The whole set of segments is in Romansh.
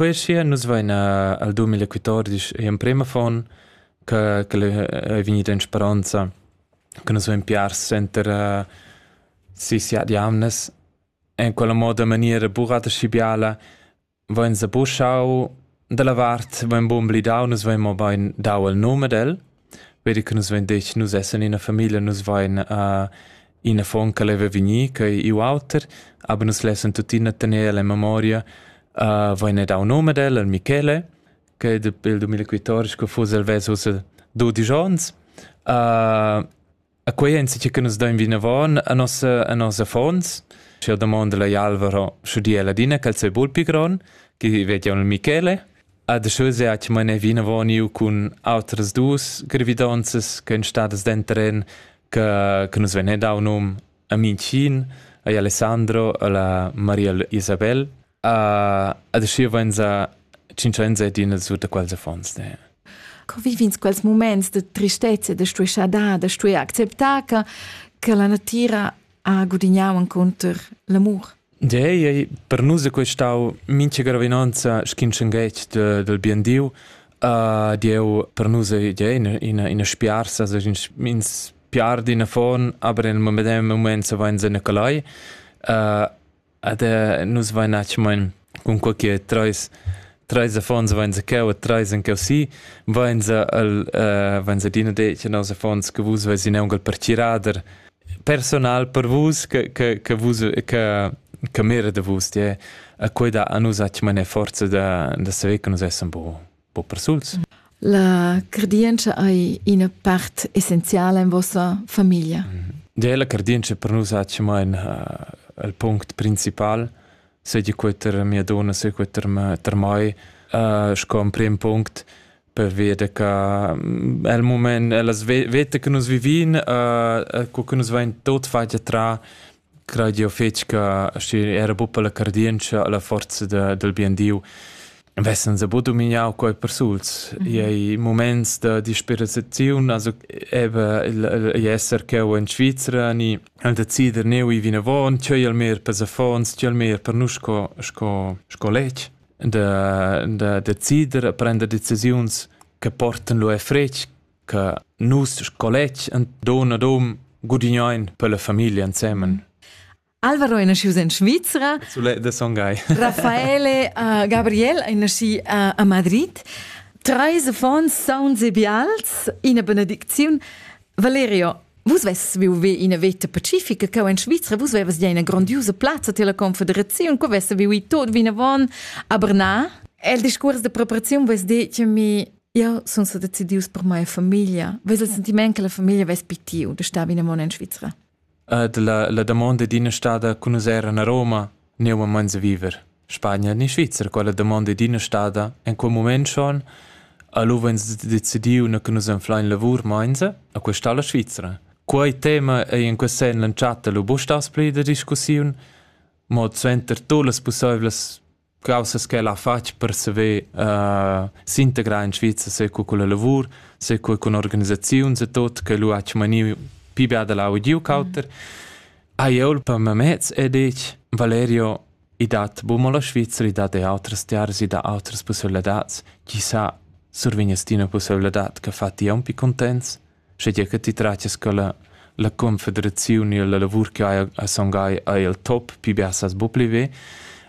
Poi sia nus vaina al 2014 e emprema fon che è vegnida in speranza che nus vain piars center uh, si siat jamnes en quella moda maniera burata și biala vain sa buschau dalla vart vain bun blidau nus vain mo bain dau il nume del Be di che nus vein detg nus essan ina famiglia, nus vein uh, in affon che leva vegnir, che ei iu auter, aber nus lessan tuttina tener el en memoria. Uh, vein dau num ad el, al Michele, che il 2014 fuss el ves ussa dodici onns. Uh, A quei ein sitg che nus dain vinavon a nossa a nossa affons. Sche domanda la Alvaro sche di ladina che sei bul pi gron, che vedion il Michele. A de sche se hat meine vinavon io cun outras dus gravidonzas che ein stadas dentren che che nus venne dau num a Mincin, a Alessandro, a la Maria Isabel Ad aschi vainsa tschinchainsa d'ina sur da quels affons. Ne? Co vivins quels moments de tristezza, de stueschadad, de stue acceptar che, che la natira ha gudignau encounter l'amur? Ja, ja, per nus è questau mincha gravinanza schinschenghetg de, del bien Dio. Uh, Dieu per nus è ja, ina, ina, ina spiarsa, also ins piar d'ina fon, aber in medem moment se vain se Nicolai. Uh, Ed nus vain atgmain cunquai che trais trais affons vain zaccheu e trais han cheu si, vain sa el vain sa adina det che nos affons che vus vesin aunc al partirader personal per vus che che che vus che che mira da vus, ja. E quei dà a nus atgmain forza da da saver che nus essan buca. po persuls. La cardientscha ei ina part essenziala in vossa famiglia. Ja, la cardientscha per nus ha tschemain uh, il punct principal, sei quei ter mia donna, sei quei ter, ter mai, uh, sco un prim punct per vedere che mm, il moment, las vete che noi vivin, uh, che noi va in tot fagia tra Craid jeu fetg che schi era buca la cardientscha, la forza da, dal bien Diu vessan sa buca domignau quei persuls. Mm -hmm. Ei muments da disperaziun, also eben ei esser cheu in Svizra ni decider neu i vinavon, tgei al mer per affons, tgei al mer per nus sco sco sco letg da da decider prender decisiuns che portan lu e fretg che nus sco letg en don ad hom gudignein per la famiglia ensemen. Alvaro è nasciuto in Svizzera. Sulet de Songhai. Raffaele uh, Gabriel è nasci uh, a Madrid. Treis affons sauns e bials, ina benedicziun. Valerio, vus vess viu ve ina veta pacifica, che in Svizzera vus vevas ja ina grandiosa plazza tier la confederaziun, che vess viu i tot vinavon a Bernard. El discurs de preparaziun vess detto mi Io sun sa decidius per mia famiglia. Ves il sentiment che la famiglia ves pi tiu de star vina mon in Svizra? Uh, de la, la domanda d'ina stada conusera a Roma ne uma mans a viver. Spagna ni Svizra quella domanda d'ina stada en quel moment schon allora ens decidiu na che nus enflein lavur mainza a questa la Svizra. Quei tema ei in quest sen lanciata lu bustas pli da discussiun, mod suenter tu las possiblas Caussas ch'el ha fatg per saver uh, s'integrar in Svizra seco culla lavur, seco cun organisaziuns e tot, che lu ha maniu pi bia da lau e giu cauter, ha jeu per memez e detg, Valerio, i dat bu mo la Svizra, i dat e outras tiaras, i dat outras pusseibilitads, chi sa survegnas ti una pusseibilitad che fa ti un pi contents, schegia che ti tratias co la, la confederaziun e la lavur che hai a songai ei el top, pi bia sas bu pli ve.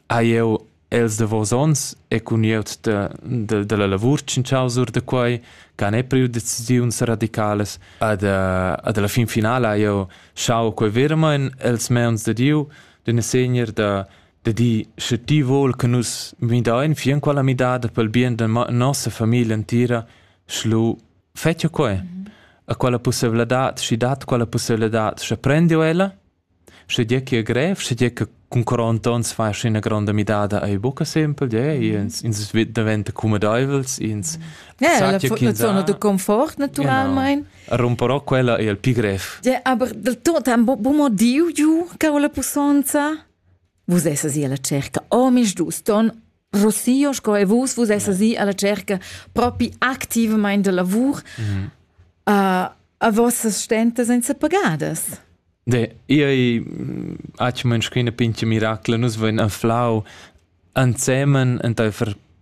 Hai eu els de vos ons e cun ieut de, de, de la lavur cincausur de quai, ca ne priu decisiuns radicales, ad, ad la fin finala io schau quei vermain els meons de Dieu, d'una segner de, de di, sche ti vol che nus midain fin quella midada pel bien de nossa famiglia entira, schlu Fetschio quai? Ha quella pusseivladad, schi dat quella pusseivladad, sche prendio ella? Sche dir che è grev, sche dir che cun 40 onns fas ina gronda midada ei buca sempel, de, ins, ins diventa cumedeivels, ins yeah, la, la zona de confort naturalmein. Genau. Romperò quella è il più grev. Yeah, aber del tot ha bu motiu giu ca la pussonza? Vus essas io la cerca, oh mis dus ton Rossio, sco e vus, vus essas i alla cerca propi activamente de lavur mm -hmm. uh, a vossas stentas senza pagadas. De, io ha ci mönschina pinche miracla, nus voin anflau ansemen enta far